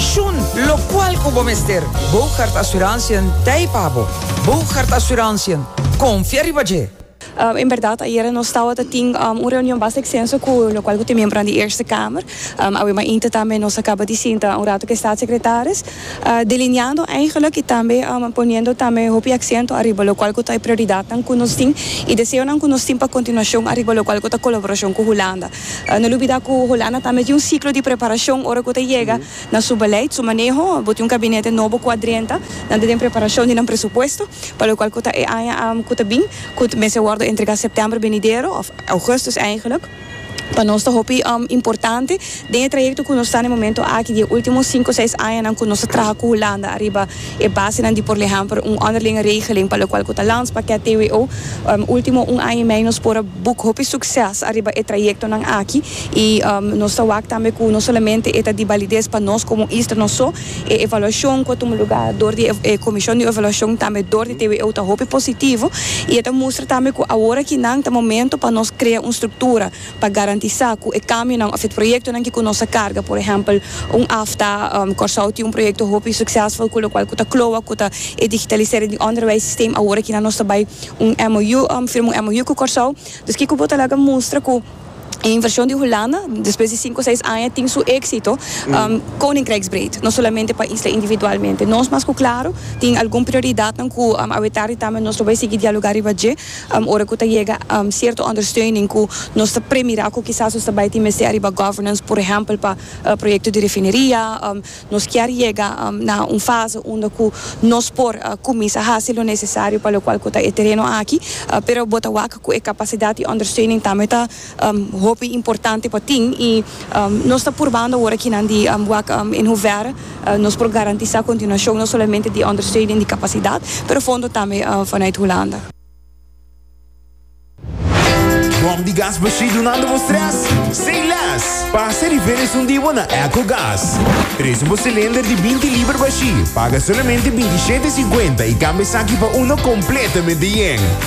Shun locual cu bo mester. Boogaard Assurantiën t'ei pa bo. Boogaard Assurantiën, confia riba dje! En berdad, ayera nos tawata tin un reunion basta extenso cu locual cu te miembronan di Eerste Kamer. Awe ma inte tambe nos a caba di sinta un rato cu e Staatssecretaris, delineando eigenlijk y tambe poniendo tambe hopi accento ariba locual cu ta e prioridadnan cu nos tin y deseonan cu nos tin pa continuacion ariba locual cu ta colaboracion cu Hulanda. No lubidá ku Holanda tambe tin un siklo di preparashon ora ku ta yega na su beleid, su maneho. Bo tin un kabinete nobo ku a drenta nan ta den preparashon di nan presupuesto, pa lokual ku ta e aña ku ta bin, ku ta mester wòrdu entregá sèptèmber benidero òf ougùstus eingelik. Pa nos ta hopi importante den e trayekto ku nos ta na e momentu aki di e último sinku seis añanan ku nos a traha ku Holanda ariba E basenan di por lehèmpel un ònderlinge regeling pa lokual ku ta lans pa kèt TWO. Último un aña i mei nos por a buk hopi sukses ariba e trayektonan aki i nos ta wak tambe ku no solamente e ta di balides pa nos komo Easter no so, e evaluashon ku a tuma lugá dor di e komishon di evaluashon tambe dor di TWO ta hopi positivo i e ta mustra tambe ku aworakí nan ta momento pa nos krea un struktura pa garantisá ku e kambionan òf e proyektonan ke ku nos a karga, por ehèmpel, un afta, Kòrsou tin un proyekto hopi suksèsful ku lokual ku ta kloa ku ta e digitalisering di ònderwijssisteem awor aki nan nos ta bai un MOU firma un MOU ku Kòrsou. Dus kiko bo ta laga mustra ku e invershon di Hulanda despues di sinku seis aña tin su éksito koninkrijksbreed, no solamente pa isla individualmente. Nos mas ku klaru tin algun prioridatnan ku awe tardi tambe nos lo bai sigui dialogá riba dje. Am ora cu ta yega am cierto ondersteuning cu nos ta premira cu kisas nos ta bay tin mester ariba governance, por ehempel pa e proyecto di refineria, am nos kier yega am na un fase unda cu nos por a cuminsa haci lo necesario pa locual cu ta e tereno aki, pero bo ta wak cu e capacidad y ondersteuning tambe ta. Hopi importante pa tin i nos ta purbando awor aki nan di wak en hoever nos por garantisa continuashon no solamente di ondersteuning di kapasidat pero fondo tambe vanuit Hulanda. Bòm di gas Bashir dunando bo strès sin lès. Pasa di felis un di bo na Eco Gas. Presu bo silinder di binti liber Bashir paga solamente binti shete i sinkuenta i kambia esaki pa uno kompletamente yen.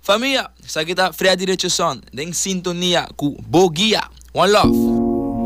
Famia, esaki ta Freddy Richardson den sintonia cu Bo Guia. One love.